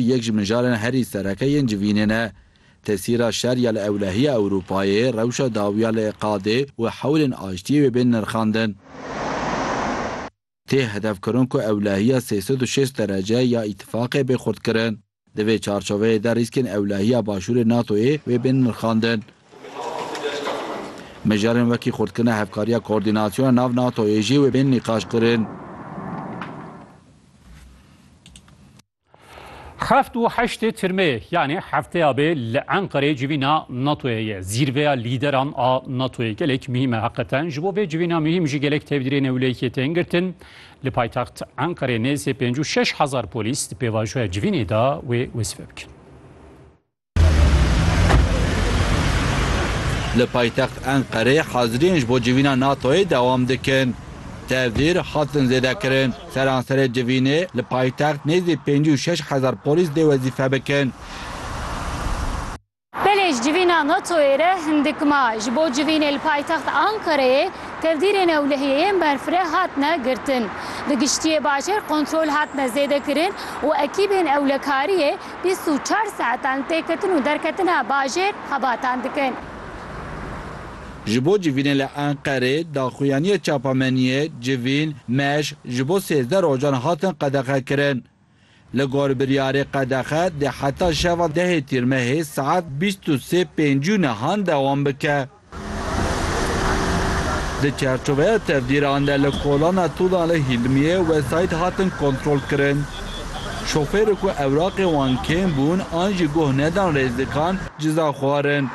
Yek ji mijarên herî sereke yên civînê ne. Tesîra şer ya li ewlehiya Ewropayê, rewşa dawiya li Iqadê û hewlên aştiyê wê bên nirxandin. Tê hedefkirin ku ewlehiya sê sed û şêst derece ya îtîfaqê bê xurtkirin. Di vê çarçoveyê de rîskên ewlehiya Başûrê NATO'yê wê bên nirxandin. Mijarên wekî xurtkirina hevkariya koordînasyona nav NATO'yê jî wê bên nîqaşkirin. Heft û heştê tirmeyê yanê hefteya bê li Enqereyê civîna NATOyê ye. Zîrveya lîderan a NATOyê gelek muhîm e heqeten. Ji bo vê civîna muhîm jî gelek tevdîrên ewlehiyê tên girtin. Li paytext Enqereyê nêzî pêncû şeş hezar polîs di pêvajoya civînê de wê wesife bikin. Li paytext Enqereyê haziriyên ji bo civîna NATO'yê dewam dikin. Tevdîr hatin zêdekirin. Seranserê civînê li paytext nêzî pêncî û şeş hezar polîs dê wezîfe bikin. Belê ji civîna NATO'yê re hindik ma. Ji bo civînê li paytext Enqereyê tevdîrên ewlehiyê yên berfireh hatine girtin. Bi giştiyê bajêr kontrol hatine zêdekirin û ekîbên ewlekariyê bîst û çar saetan têketin û derketina bajêr xebatan dikin. Ji bo civînê li Enqerê, daxuyaniya çapameniyê Civîn, Meş ji bo sêzdeh rojan hatin qedexekirin. Li gor biryarê qedexe dê heta şeva dehê Tîrmehê saet bîst û sê pêncî û nihan dewam bike. Di çerçoveya tevdîran de li kolana Tûlan li Hîlmiyê wesayît hatin kontrolkirin. Şofêrê ku ewraqên wan kêm bûn an jî guh nedan rêzdikan ceza xwarin.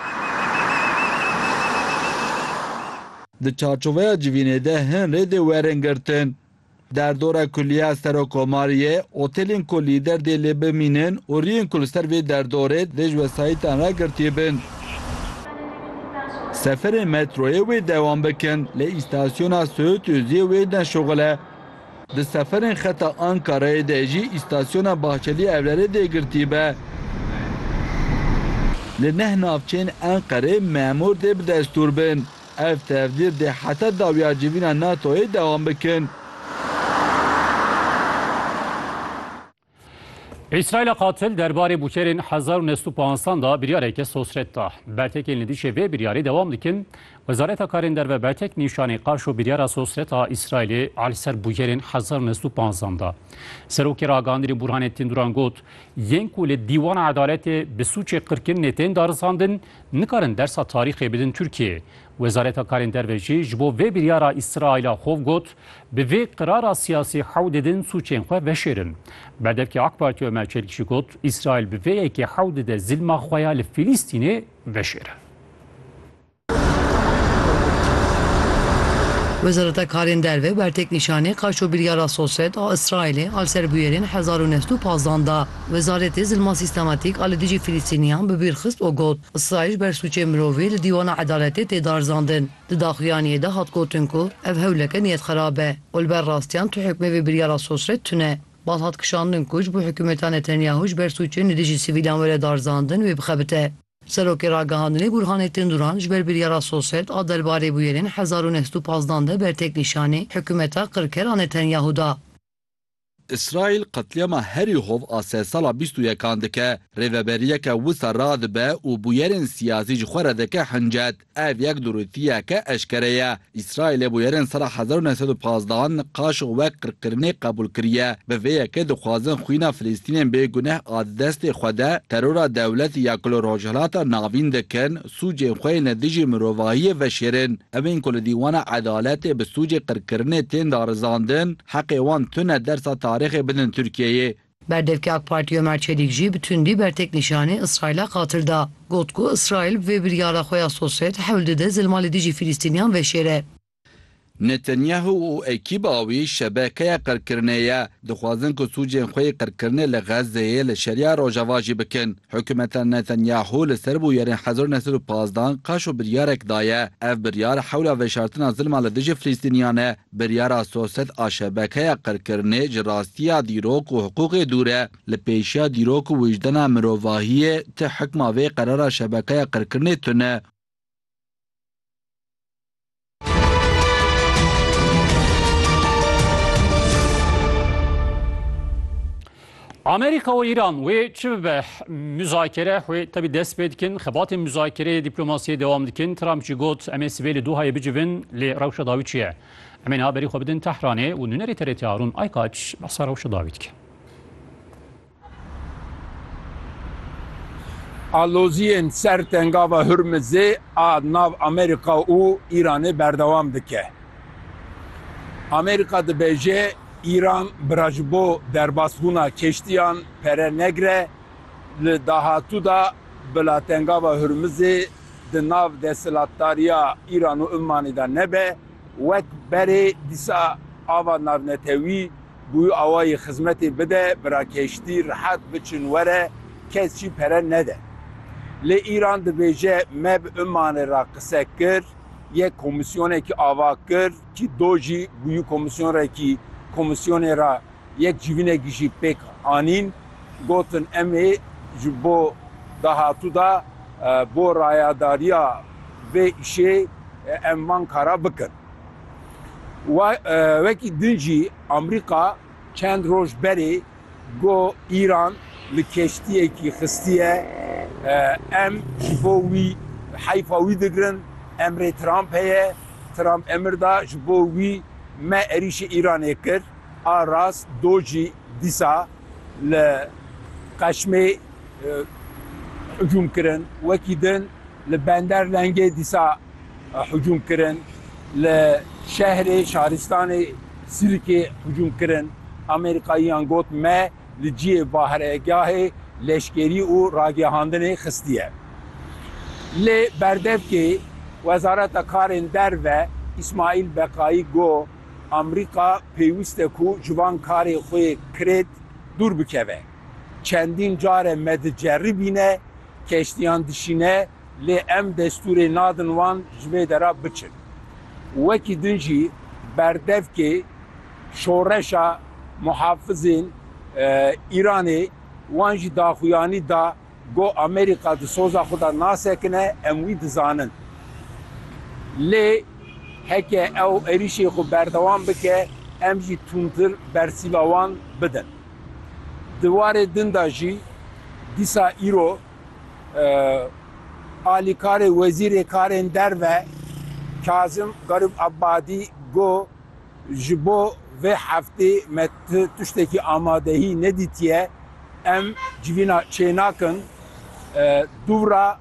Di çarçoveya civînê de hin rê dê werin girtin. Derdora ku liya Serokomarê ye, otelên ku lîder dê lê bimînin û riyên ku li ser vê derdorê dê ji wesayîtan re girtî bin, seferên metroyê wê dewam bikin lê îstasyona Söğütözüyê wê ne şixul e. Di seferên xeta Ankarayê de jî îstasyona Bahçeli Evlerê dê girtî be. Li neh navçeyên Enqerê memûr dê bi destûr bin. Ev tevdîr dê heta dawiya civîna NATO'yê dewam bikin. Îsraîla qatil derbarê bûçerên hezar û nest û panzdan de biryareke sosret da. Bertekên li dijî vê biryarê dewam dikin. Wezareta Karên Derve bertek nîşanî qaş û biryara sosret a Îsraîlê a li ser bûcerên hezar û nest û panzdan da. Serokê ragihandinê Burhanettin Duran got, Yên ku li Dîwana Edaletê bi sûcê qirkirinê tên darizandin, Nikarin dersa tarîxê bidin Tirkiyeyê. Wezareta Karên Derve jî ji bo vê biryara Îsraîla xov got, Bi vê qirara siyasî hewl didin sûcên xwe veşêrin. Berdevkê AK Partî Omer Çelik jî got, Îsraîl bi vê yekê hewl dide zilma xwe ya li Fîlîstînê veşêre. Wezareta Karên Derve ber têknîşanê qaşo biryara Sosed a Îsraîlê a li ser bûyerên hezar û neh sed û pazdeh da. Wezaretê Zilma Sîstematîk a li dijî Filistîniyan bi bîr xist û got, Îsraîl ji ber sûcên mirovî li dîwana edaletê tê darzandin. Di daxuyaniyê de hat gotin ku ev hewleke niyetxerab e û li ber rastiyan tu hukmê vê biryara sosret tune. Bal hat kişandin ku ji bo hikûmeta Netanyahu ji ber sûcên li dijî sivîlan were darzandin wê bixebite. Serokê Ragihandinê Burhanettin Duran ji ber biryara sosret a derbarê bûyerên hezar û neh sed û pazdeh de bertêknîşanî hikûmeta qirker a Netanyahu da. Îsraîl qetlîama herî hov a sê sala bîst û yekan dike. Rêveberiyeke wisa radibe û bûyerên siyasî ji xwe re dike hincet. Ev yek durûtiyeke eşkere ye. Îsraîlê bûyerên sala hezar û neh sed û pazdeh an qaşo wek qirkirinê qebûl kiriye. Bi vê yekê dixwazin xwîna Filistînên bê guneh a di destê xwe de terora dewletê ya ku li Rojhilata Navîn dikin, sûcên xwe yên li dijî mirovahiyê veşêrin. Evên ku li dîwana edaletê bi sûcê qirkirinê tên darizandin, Heqê wan tune dersa tarîxê bidin Tirkiyeyê. Berdevkê AK Partî Omer Çelîk jî bi tundî berteknîşanî Îsraîla qatil da. Got ku Îsraîl bi vê biryara xwe ya sosyet hewl dide zilma li dijî Fîlîstîniyan veşêre. Netanyahu û ekîba wî şebekeya qirkirinê ye, dixwazin ku sûcên xwe yê qirkirinê li Xezzeyê li Şeriya Rojava jî bikin. Hikûmeta Netanyahu li ser bûyerên hezar û neh sed û pazdeh an qaşo biryarek daye. Ev biryar hewla veşartina zilma li dijî Filîstîniyan e. Biryara soset a şebekeya qirkirinê ji rastiya dîrok û hiqûqê dûr e. Li pêşiya dîrok û wijdena mirovahiyê ti hikma vê qerara şebekeya qirkirinê tune e. Amerîka û Îran wê çi bibe muzakere wê tevî dest pê dikin, xebatên muzakereyê dîplomasiyê dewam dikin. Trump jî got em ê sibê li Dohayê bicivin lê rewşa dawî çi ye? Em ê niha berî xwe bidin Tehranê û nûnerê TRT Harûn Aykaç behsa rewşa dawî dike. Aloziyên ser tengava Hurmizê a nav Amerîka û Îranê berdewam dike. Amerîka dibêje Îran bira ji bo derbasbûna keştiyan pere negire, li dahatû de bila Tengava Hurmizê di nav desthilatdariya Îran û Ummanê de nebe, wek berê dîsa ava navnetewî bûyî awayî xizmetê bide, bira keştî rihet biçin were, kes jî pere nede. Lê Îran dibêje me bi Ummanê re qise kir, yek komîsyonekî ava kir, Ki do jî bûyî komîsyon re kî komîsyonê re yek civînekî jî pêk anîn gotin em ê ji bo dahatû de bo rayadariya vê îşê em van kara bikin. Wekî din jî Amerîka, Çend roj berê got Îran li keştiyekî xistiye, em ji bo wî heyfa wî digirin, emrê Trump heye, Trump emir da ji bo wî me êrîşê Îranê kir, a rast do jî dîsa li Qeşmê hicûm kirin wekî din. Li bender lengê dîsa hicûm kirin, li şehrê şaristanê Sirikê hicûm kirin. Amerîkayiyan got me li ciyê baharegahê leşkerî û ragihandinê xistiye. Lê berdevkê Wezareta Karên Derve Îsmaîl Beqayî got Amerîka pêwîst e ku ji van karê xwe yê kirêt dûr bikeve. Çendîn care me diceribîne Keştiyan dişîne lê em destûrê nadin wan ji vê dera biçin. Wekî din jî berdevkê şoreşa muhafizên Îranê wan jî daxuyanî da ku Amerîka di soza xwe de nasekine em wî dizanin. Lê heke ew êrîşê xwe berdewam bike em jî tundtir bersîva wan bidin. Di warê din de jî dîsa îro alîkarê Wezîrê Karên Derve Kazim Garib Ebadî got, Ji bo vê heftê me tiştekî amadehî nedîtiye, em civîna çênakin. Dûvra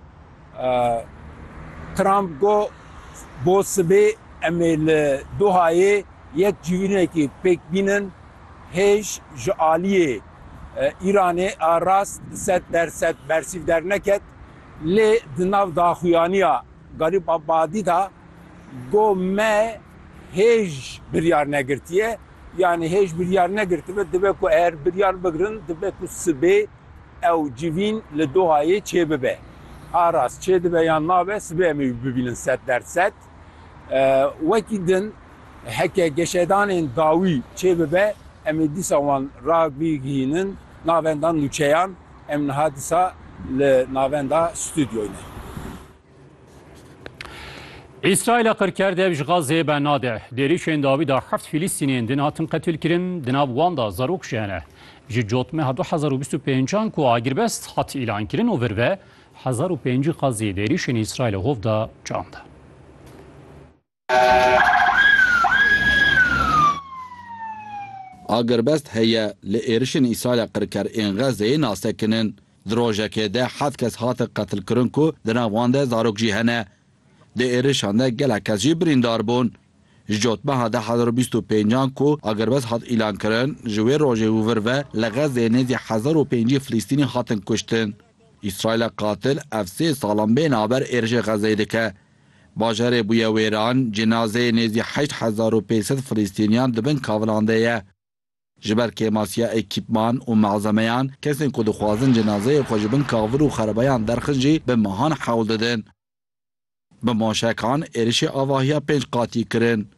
Trump got, Bo sibê em ê li Dohayê yek civînekî pêk bînin Hêj ji aliyê Îranê a rast sed der sed bersîv derneket, lê di nav daxuyaniya Garîb Abadî de got me hêj biryar negirtiye, yanî hêj biryar negirtibe dibe ku eger biryar bigirin dibe ku sibê ew civîn li Dohayê çêbibe. A rast çêdibe yan nabe sibê em ê wî bibînin sed der sed. Wekî din heke geşedanên dawî çêbibe em ê dîsa wan rabigihînin navenda nûçeyan. Em niha dîsa li navenda stûdyoyê ne. Îsraîla qir kerd ev ji Gazeyê bernade. Di êrişên dawî de heft Fîlîstînên din hatin qetilkirin, di nav wan de zarok jî hene. Ji cotmeha du hezar û bîst û pênc an ku agirbest hat îlankirin û vir ve, Hezar û pêncî qazî di êrîşên Îsraîlê hov de can da. Agirbest heye li êrişên Îsraîlê qirker ên Xezzeyê nas tekin in. Di rojekê de heft kes hatin qetilkirin ku di nav wan de zarok jî hene. Di êrişan de gelek kes jî birîndar bûn. Ji cotmeha deh hezar û bîst û pênc an ku agirbest hat îlankirin ji wê rojê û vir ve li Xezzeyê nêzî hezar û pêncî Filistînî hatin kuştin. Îsraîla qatil ev sê salan bê naber êrişê Xezeyê dike. Bajarê bûye wêran, cinazeyê nêzî heşt hezar û pênc sed Filîstîniyan di bin kavilan de ye. Ji ber kêmasiya ekîpman û malzemeyan, kesên ku dixwazin cinazeyê xwe ji bin kavir û xerabayan derxin jî bi mehan hewl didin. Bi moşekan êrişê avahiya pênc qatî kirin.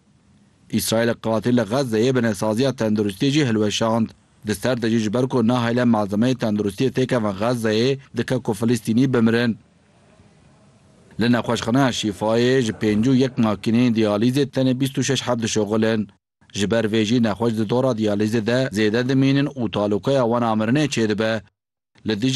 Îsraîlê qatî li Xezzeyê binesaziya tenduristiyê jî hilweşand. Di ser de jî ji ber ku nahêle malzemeyê tenduristiyê têkevin Xezzeyê, dike ku Filistînî bimirin. Li nexweşxaneya Şîfayê ji pêncî û yek makîneyên diyalîzê tenê bîst û şeş heb dişuxulin. Ji ber vê jî nexweş di dora diyalîzê de zêde dimînin û talûkaya wan a mirinê çêdibe. Li dijî